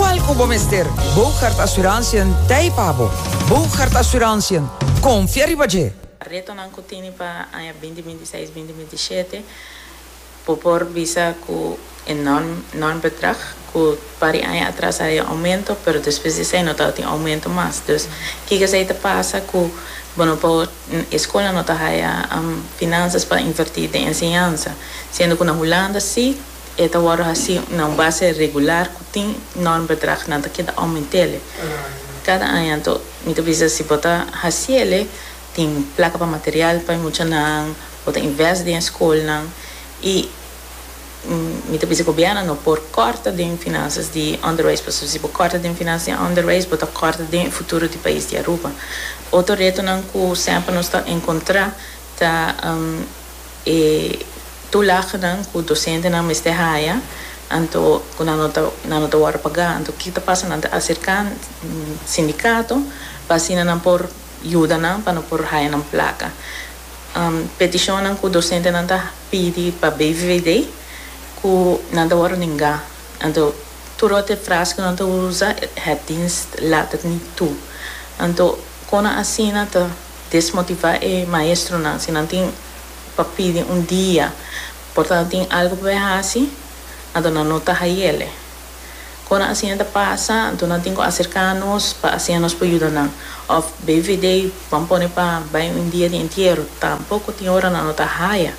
Kual ku bo mester? Boogaard Assurantiën t'ei pa bo. Boogaard Assurantiën, konfia riba dje! Retonan ku tini pa aña binti binti seis, binti binti shete bo por bisa ku e norm norm bedrag ku pa di aña atras a haña oumento pero despues di esei no tabatin oumento mas. Dus kiko esei ta pasa ku bo no por e skola no ta haña finansas pa inverti den enseñansa siendo ku na Hulanda si. E ta wòrdu hasí na un base regular ku tin nòrm bedrag nan ta keda oument'el kada aña. Anto mi ta bisa si bo ta hasiel tin plaka pa material pa e muchanan, bo ta invest den e skolnan i mi ta bisa gobièrnu no por kòrta den finansas di onderwijs pasobra si bo kòrta den finansas di onderwijs bo ta kòrta den e futuro di pais di Aruba. Otro retonan ku semper nos ta enkontrá ta. E tulagnan ku dosentenan mester haya anto ku nan no ta wòrdu pagá, anto ki ta pasa? Nan ta aserká sindikato pa asina nan por yuda nan pa no por haya nan plaka. Petishonnan ku dosentenan ta pidi pa BVVD ku nan ta wòrdu ningá, anto tur ot e fras ku nan ta usa, het dienst laat het niet toe. Anto kon asina ta desmotivá e maestronan si nan tin pa pidi un dia por ta nan tin algu pa bai hasi anto nan no ta hayele kon nan asina ta pasa anto nan tin ku aserka nos pa asin nos por yuda nan òf BVD ban pone pa bai un dia di entiero tampoko tin ora nan no ta haya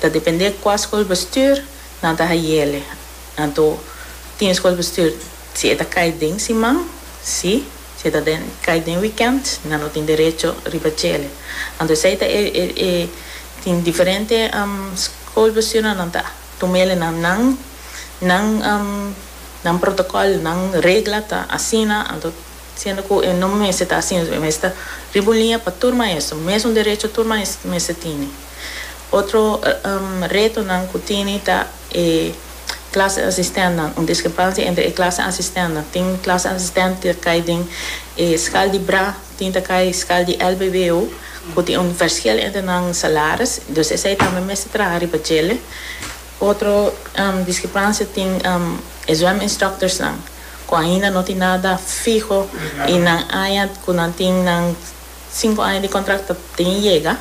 ta depende kua skolbestuur nan ta hayele anto tin skolbestuur si e ta kai den siman si. Si e ta den kai den weekend nan no tin derecho riba chele. Anto esei ta e tin diferente school bus yo nan ta tumele nan nan nan nan protocol nan regla ta asina anto siendo cu e no mester ta asina e mester ta riba un linea pa tur maestro mesun derecho tur maestro mester tini otro retonan cu tini ta. e clase asistentnan, un discrepancia entre e clase asistentnan, tin clase asistent cu ta cay den e schaal di bra, tin ta cay schaal di lbbo, cu tin un verschil entre nan salaris, dus esey tambe mester traha riba djele. Otro discrepancia tin e zwem instructorsnan, cu ainda no tin nada fiho y nan aña cu nan tin nan cinco aña di contract ta tin yega,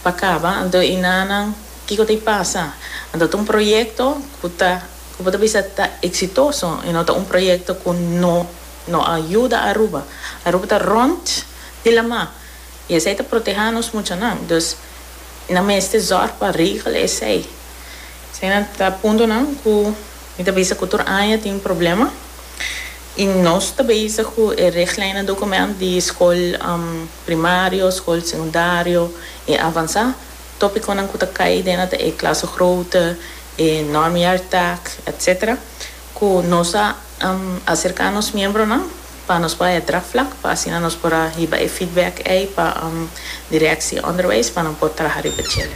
Pa kaba, anto i na nan kiko ta i pasa. Anto ta un proyekto ku ta, ku bo ta bisa ta eksitoso i no ta un proyekto ku no no a yuda Aruba. Aruba ta rònt di lamá i esei ta protehá nos muchanan. Dus nan mester zòrg pa regel esei. Esei nan ta puntonan ku mi ta bisa ku tur aña tin problema i nos ta bisa ku e regleinnan dokument di skol primario, skol sekundario i avansá, tópikonan ku ta kai den ata e klasgroote, e normjaartak, etc. Ku nos a aserká nos miembronan pa nos bai e draagvlak pa asina nos por a hiba e feedback ei pa direksie onderwijs pa nan por traha riba chele.